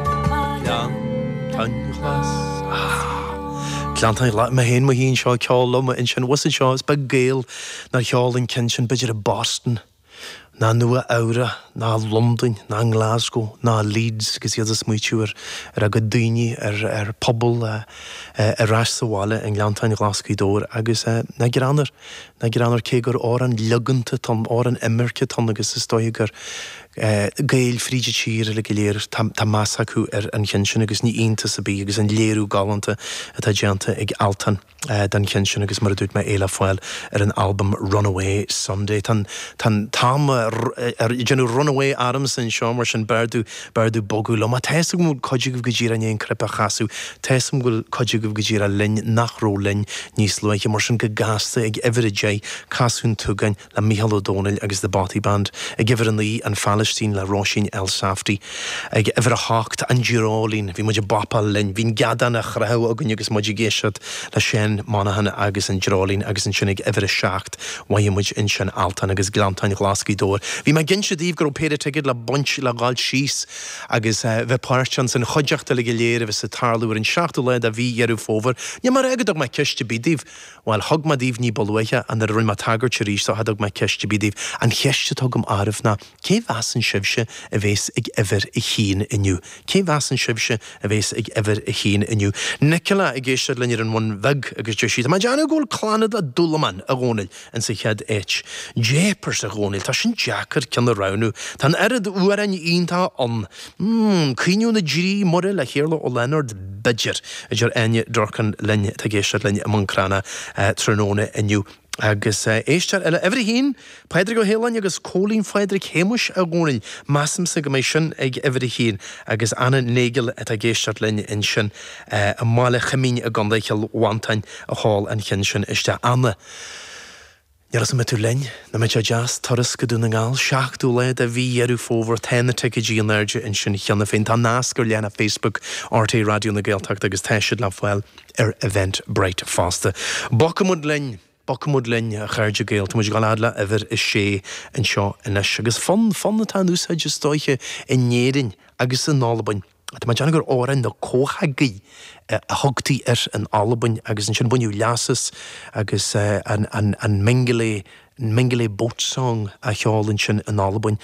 Gleanntáin Ghlas'. Gleanntáin Ghlas'. Mé féin i mo shuí anseo ag ceol liom ansin abhus anseo, is beag Gael nár cheol an ceann sin b'fhéidir i Boston ná Nua Eabhrac ná Londain ná Glasgow ná Leeds agus iad ag smaoitiú ar ar a gcuid daoine, ar a bpobal ar ais sa bhaile i nGleanntáin Ghlas' Ghaoth Dobhair agus nach greannmhar, nach greannmhar cé gur amhrán logánta atá ann, amhrán imirce atá ann agus is dóiche gur Gaeil fríd an tír uilig go léir, tá meas acu ar an cheann sin agus ní iontas ar bith agus an léiriú galánta atá déanta ag Altan don cheann sin agus mar a dúirt mé é le fáil ar an albam Runaway Sunday. Tá an t-am ag déanamh runaway ormsa anseo mar sin b'fhearr domh bogadh liom. Ach tá 'fhios agam go bhfuil cuid agaibh go díreach i ndiaidh an cnaipe a chasadh, tá 'fhios agam go bhfuil cuid agaibh go díreach linn nach raibh linn níos luaithe mar sin go gasta ag uimhir a deich Casadh an tSúgáin le Mícheál Ó Domhnaill agus The Bothy Band, ag uimhir a naoi, An Phailistín le Róisín Elsafty, ag uimhir a hocht, An Dreoilín, bhí muid ag bopáil linn, bhí an geadán á chroitheadh againn agus muid ag éisteacht le Seán Monaghan agus an Dreoilín agus ansin ag uimhir a seacht mhoithigh muid ansin Altan agus Gleanntáin Ghlas' Ghaoth Dobhair. Bhí mé ag inse daoibh go raibh péire ticéad le baint, le ghabháil síos agus bheith páirteach ann, san chuideachta uilig go léir a bheas ag tarlú ar an seachtú lá de mhí Dheireadh Fómhair. Níl mé ag rá go dtug mé ceist ar bith daoibh. Bhuel, thug mé daoibh ní ba luaithe, nuair a rinne mé tagairt arís dó, cha dtug mé ceist ar bith daoibh, an cheist atá agam oraibh ná, cé mheasann sibhse a bhéas ag uimhir a haon inniu? Cé mheasann sibhse a bhéas ag uimhir a haon inniu? Nicola ag éisteacht linn ar an Bhun Bheag agus deir sí, Tá mé ag déanamh go bhfuil Clannad le Dúlamán, a Dhónail, insa chéad áit. Jeepers, a Dhónail, tá sin deacair ceann a roghnú. Tá an oiread amhráin iontacha ann. Mmm, Caoineadh na dTrí Muire le hIarla Ó Lionáird b'fhéidir, a deir Áine Durkin linn atá ag éisteacht linn i mBun Cranncha tráthnóna inniu. Agus éisteoir eile, uimhir a haon, Pádraig Ó hAoláin agus Cóilín Phádraig Shéamais, a Dhónail, measaimse go mbeidh sin ag uimhir a haon, agus Anna Nagle atá ag éisteacht linn ansin i mBaile Choimín i gContae Chill Mhantáin a chuir an ceann sin isteach. Anna. Níl a fhios an mbeidh tú linn, nach mbeadh sé deas, Turas go Dún na nGall, 7ú lá de mhí Dheireadh Fómhair, Tá na ticéidí in airde ansin cheana féin, tá nasc ar leathanach Facebook RTÉ Raidió na Gaeltachta agus tá siad le fáil ar Eventbrite fosta. Bogfaimid linn, Bogfaimid linn a chairde Gael, táimid ag dul fhad le huimhir a sé anseo anois agus fonn, fonn atá in úsáid is dóiche in Éirinn agus in Albain. Tá mé ag déanamh gur Òran na Comhachaige a thugtaí air in Albain agus ansin baineadh leas as agus an Mingulay, Mingulay Boat Song á cheol ansin in Albain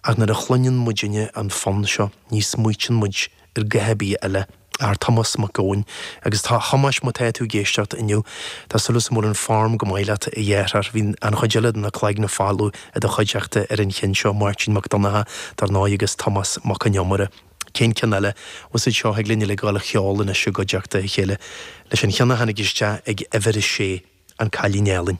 ach nuair a chluineann muid inniu an fonn seo ní smaoiteann muid ar ghuth ar bith eile ach Tomás Mac Eoin agus a Thomáis má tá tú ag éisteacht inniu tá súil agam go bhfuil an fhoirm go maith leat a dheartháir, bhí an chuid eile de na Cloigne Folmha i do chuideachta ar an cheann seo, Máirtín Mac Donnchadha dar ndóigh agus Tomás Mac Con Iomaire. Cén ceann eile? Usaid seo againn uilig a dhul a cheol anois i gcuideachta a chéile leis an cheann a tháinig isteach ag uimhir a sé, An Cailín Álainn.